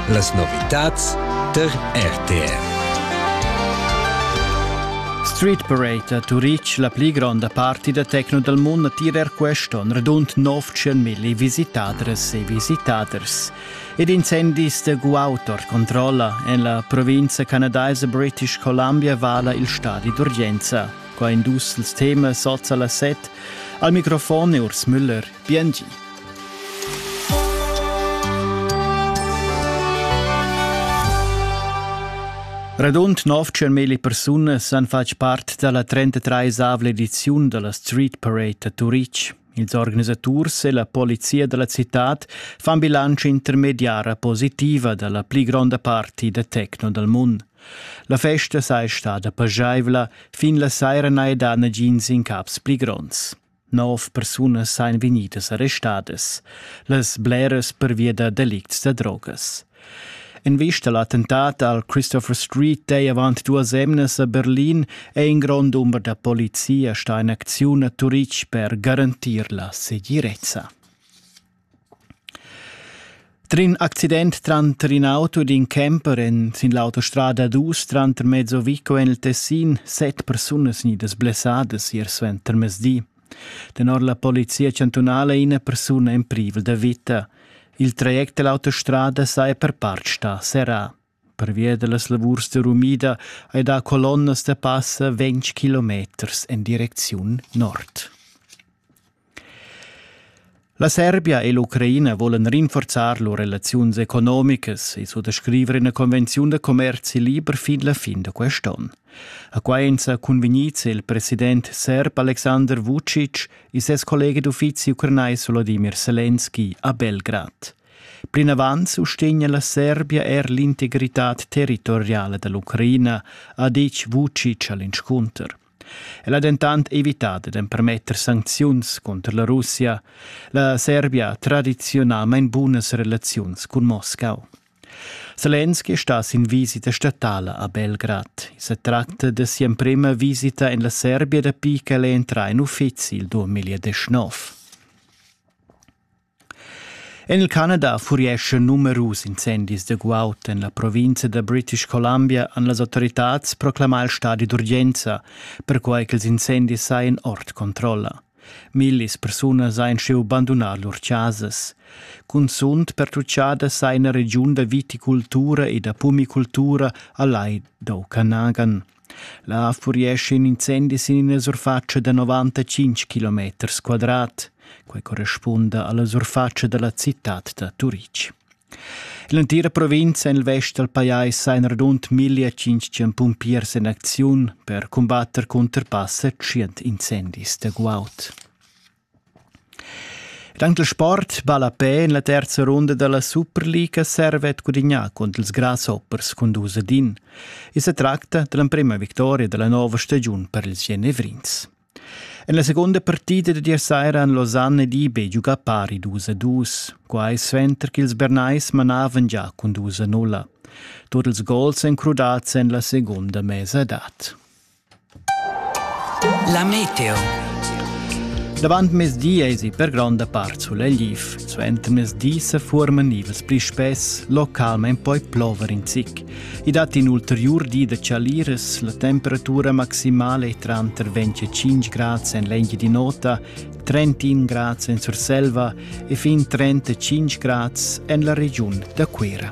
Las novitads tar RTR. Street Parade a Turic, la pli gronda parti da tecno dal mund attira er questo, un radund 900 milli visitadres e visitaders. Ed incendis da guautor controlla en la provincia canadaisa British Columbia vala il stadi d'urgenza. Qua in dus temas sozza la set. Al microfon è Urs Müller. Biengi. Radund 900.000 persunas han fatg part dalla 33esavla ediziun dalla Street Parade a Turitg. Ils organisaturs e la polizia dalla citad fan bilantscha intermediara positiva dalla pli gronda parti da techno dal mund. La festa sei stada pageivla, fin la saira n'hai dà nagins incaps pli gronds. Nov persunas ein vegnidas arrestadas, las bleras pervia da delicts da drogas. In vista l'attentat al Christopher Street dei avant duas emnas a Berlin è in grond umber da polizia sta in acziun a Turitg per garantir la segirezza. Trin accident tranter in auto ed in camper en sin l'autostrada dus tranter mezzo Vico en il Tessin set persunas gnidas blessadas ier suenter mezdi. Tenor la polizia chantunala è ina persuna en privel da vita. Il traject dell'autostrada saja per part stà serrà. Pervia dallas lavurs da rumida ei da colonnas da passa ventg kilometers en direcziun nord. La Serbia e l'Ucraina volan rinforzar lur relaziuns economicas e suttascriver ina convenziun da commerzi liber fin la fin da quest'onn. A Quaenza cunvegnize il president serb Alexander Vucic e ses collega d'uffizi ucranais Volodimir Selenski a Belgrad. Plinavant sustegna la Serbia er l'integritad territoriala da l'Ucraina, ha ditg Vucic a l'inscunter. El ha dentant evità da empermetter sancziuns cunter la Russia. La Serbia ha tradiziunalmain bunas relaziuns cun Moscau. Selenski è stà sin visita statala a Belgrad. I sa tratta da sia emprima visita en la Serbia dapi ch'el è entrà en uffizi il 2019. En il Canada furieschan numerus incendis da guaud en la provinza da British Columbia han las autoritads proclamà il stadi d'urgenza, perquai ch'ils incendis sajan ord controlla. Millis persunas hajan schiu bandunà lur chasas. Cunzunt pertutgada sa ina regiun da viticultura e da pumicultura a Lai d'Okanagan. Là furia in incendi sin ina surfatscha da novantacinc kilometers quadrat. Quei corrispunda alla surfatscha dalla citad da Turitg. L'entira provinza en il vest dal pajais ha in radund 1500 pumpiers en acziun per cumbatter cunter passa tschient incendis da guaud. Ed anc il sport ballapè en la terza runda da la Superliga servet gudignà cunter ils Grasshoppers cun dus ad in. I sa tracta da l'emprima victoria da la nova stagiun per ils genevrins. En la segunda partida da ier saira han Lausanne ed eBay giugà pari dus a dus, quai suenter ch'ils Bernais manavan già cun dus a nulla. Tut ils gols èn crudads en la segunda mesadad. La meteo. Davant mezdi eisi per gronda part sulegl guiv. Suenter mezdi se fuorman nivels pli spess, localmein poi plover in zic. I dat in ulteriur di da chaliras, la temperatura maximale è tranter 25 grad en l'engi di nota, 31 grad en Surselva e fin 35 grad en la regiun da Cuira.